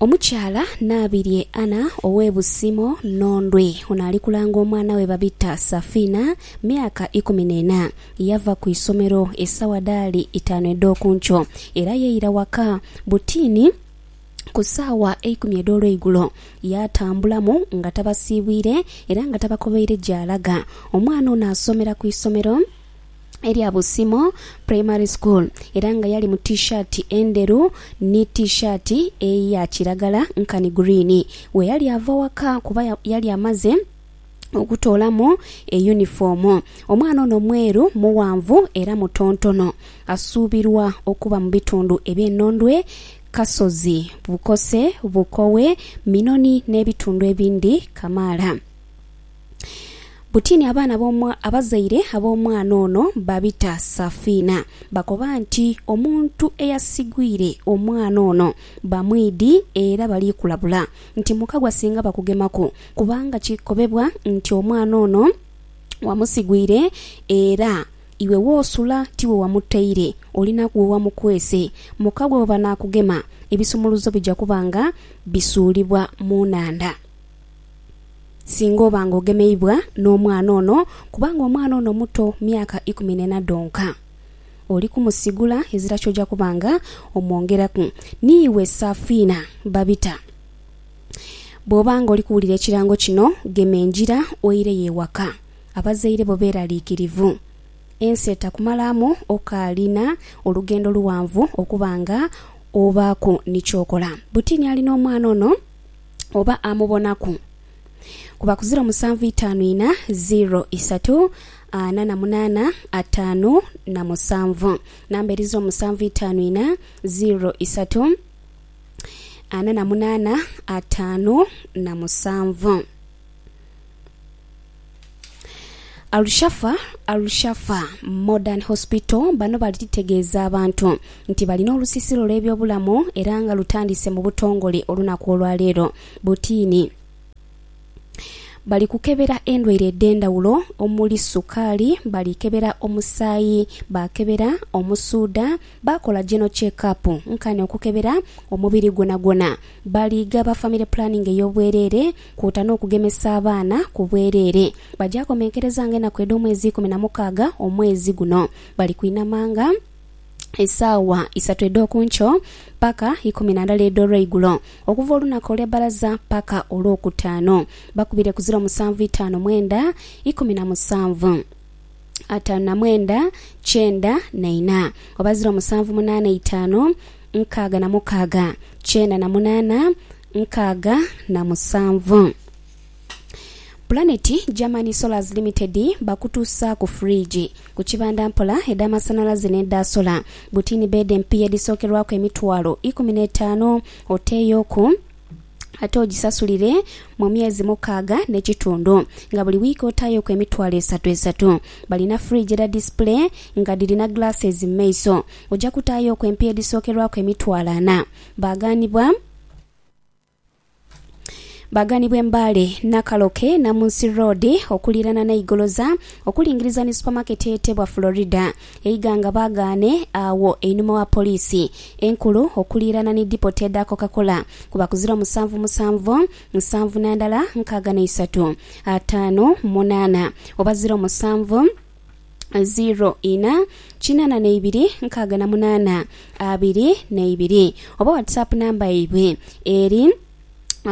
Omukyala Nabirye Anna ow'e Busimo, Nhondwe, ono ali kulanga omwana we babita Safina, myaka ikumi n'ena. Yava ku isomero esawa dhaali itaanu edh'oku nkyo era yeira waka butiini ku saawa eikumi edh'olweigulo. Yaatambulamu nga tabasiibwire era nga tabakobeire gy'alaga. Omwana ono asomera ku isomero. erya Busimo Primary School era nga yali mu T-shirt endheru ni T-shirt eya kiragala nkani green weyali ava waka kuba yali amaze okutoolamu e yunifoomu. Omwana ono mweru, mughanvu era mutontono. Asuubirwa okuba mu bitundu eby'e Nondwe, Kasozi, Bukose, Bukowe, Minoni n'ebitundu ebindi kamaala. Butini abaana ab'omwa, abazaire ab'omwana ono babita Safina bakoba nti omuntu eyasigwire omwana ono bamwidhi era bali kulabula nti mukagwa singa bakugemaku kubanga kikobebwa nti omwana ono wamusigwire era iwe w'osula tiwe wamutaire olinaku we wamukwese. Mukagwa bwe banaakugema ebisumuluzo bija kuba nga bisuulibwa mu nhandha. singa oba nga ogemeibwa n'omwana ono kubanga omwana ono muto myaka ikumi n'ena dhonka. Oli kumusigula ezira ky'oja kuba nga omwongeraku. Ni iwe Safina Babita bw'oba nga oli kuwulira ekirango kino gema engira oireyo ewaka. Abazaire bo beeraliikirivu. Ensi etakumalaamu okaalina olugendo luwanvu okuba nga obaaku ni ky'okola. Butini ali n'omwana ono. oba amubonaku kuba ku ziro musanvu itaanu ina ziro isatu ana na munaana ataanu na musanvu namba eri ziro musanvu itaanu ina ziro isatu ana na munaana ataanu na musanvu. Al-Shafa, Al-Shafa Modern Hospital bano balitegeeza abantu nti balina olusisiro lw'ebyobulamu era nga lutandise mu butongole olunaku olwaleero butiini bali kukebera endwaire edh'endhawulo omuli sukaali, bali kebera omusaayi, baakebera omusuudha, baakola General Check Up nkani okukebera omubiri gwonagwona, bali ghaba Family Planning ey'obwereere kwoota n'okugemesa abaana ku bwereere. Baja komenkerezanga enaku edh'omwezi ikumi na mukaaga omwezi guno. Bali kwinamanga esaawa isatu edh'oku nkyo paka ikumi na ndala edh'olweigulo, okuva olunaku olwe bbalaza paka olwokutaanu. Bakubire ku ziro musanvu itaanu mwenda ikumi na musanvu, ataanu na mwenda kyenda na ina, oba ziro musanvu munaana itaanu nkaaga na mukaaga kyenda na munaana. nkaaga na musanvu. Planet Germany Solars Limited bakutuusa ku fridge, ku kibanda mpola, edh'amasanhalaze n'edha sola, butini beedi empiya edhisookerwaku emitwalo ikumi n'etaanu oteeyoku ate ogisasulire mu myezi mukaaga n'ekitundu nga buli wiiki otaayoku emitwalo esatu esatu. Balina fridge edha disipule nga dhirina glasses mu maiso. Oja kutaayoku empiya edhisookerwaku emitwalo ana. Baaghanibwa. Baaganibwa Mbale, Nakaloke, Namunsi Road okuliirana n'e Igoloza okulingiriza ni supamaketi eyetebwa Florida e Iganga baagaane agho einhuma wa Poliisi enkulu okuliirana ni dipoti edha Coca Cola kuba ku ziro musanvu musanvu musanvu na ndala nkaaga na isatu ataanu munaana oba ziro musanvu ziro ina kinana neibiri nkaaga na munana abiri neibiri oba whatsapp namba yaibwe eri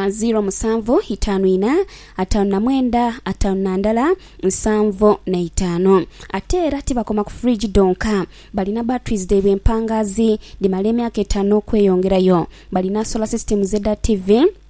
ziro musanvu itanu ina atanu na mwenda atanu na ndala nsanvu neitano ate era tibakoma ku fridge dhonka balina batteries dhaibwe empangazi dhimala emyaka etanu okweyongerayo balina solar systems edha TV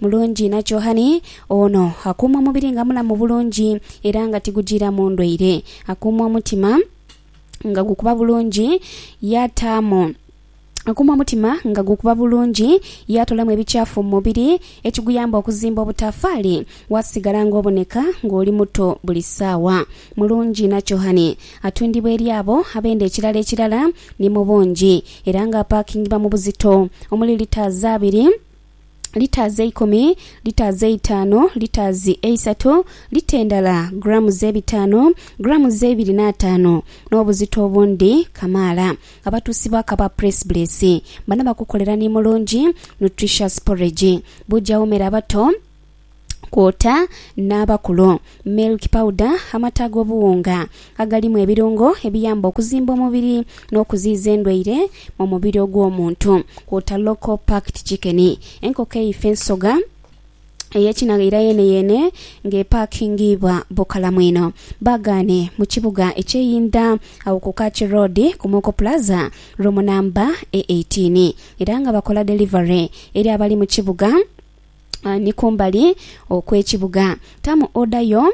Mulungi inha kyohani ono akuuma omubiri nga mulamu bulungi era nga tigujiiramu ndwaire. Akuuma omutima nga gukuba bulungi yaataamu Akuuma omutima nga gukuba bulungi yaatoolamu ebikyafu mu mubiri ekiguyamba okuzimba obutaafaali waasigala ng'oboneka ng'oli muto buli saawa. Mulungi inha kyohani atundibwa eri abo abenda ekirala ekirala ni mu bungi era nga apaakingibwa mu buzito omuli litres abiri. liters eikumi, liters eitaanu, liters eisatu, lita endala grams ebitaanu, grams eibiri n'ataanu, n'obuzito obundi kamaala. Abatuusi ba Kabaa Press Blesi bano bakukolera ni mulungi, nutritious porridge. Buuja wumera bato. kwota n'abakulu. Milk powder, amata ag'obuwunga agalimu ebirungo ebiyamba okuzimba omubiri n'okuziiza endwaire mu mubiri ogw'omuntu, kwota local packed chicken, enkoko eife ensoga ey'ekinagha era yeeneyeene ng'epakingiibwa bukalamu inho. Baagaane mu kibuga eky'e Inda agho ku Kachi Road ku Moko Plaza room namba e eighteen era nga bakola delivery eri abali mu kibuga. ni kumbali okw'ekibuga. Tamu oda yo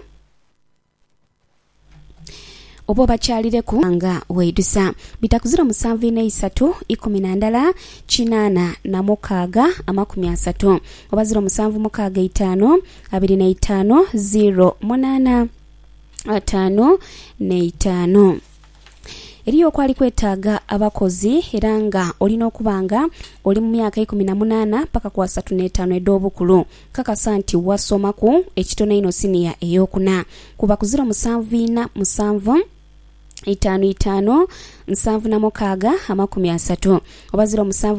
oba obakyalireku nga weidhusa. Bitakuzira musanvu inha isatu ikumi na ndala kinaana na mukaaga amakumi asatu oba ziro musanvu mukaaga eitaanu abiri na itaanu ziro munaana ataanu n'eitaanu. Eriyo okwali kwetaaga abakozi era nga olina okuba nga oli mu myaka eikumi na munaana paka ku asatu n'etaanu edh'obukulu. Kakasa nti wasomaku ekitono einho siniya ey'okuna, kuba ku ziro musanvu ina musanvu, itaanu itaanu, nsanvu na mukaaga, amakumi asatu, oba ziro musanvu,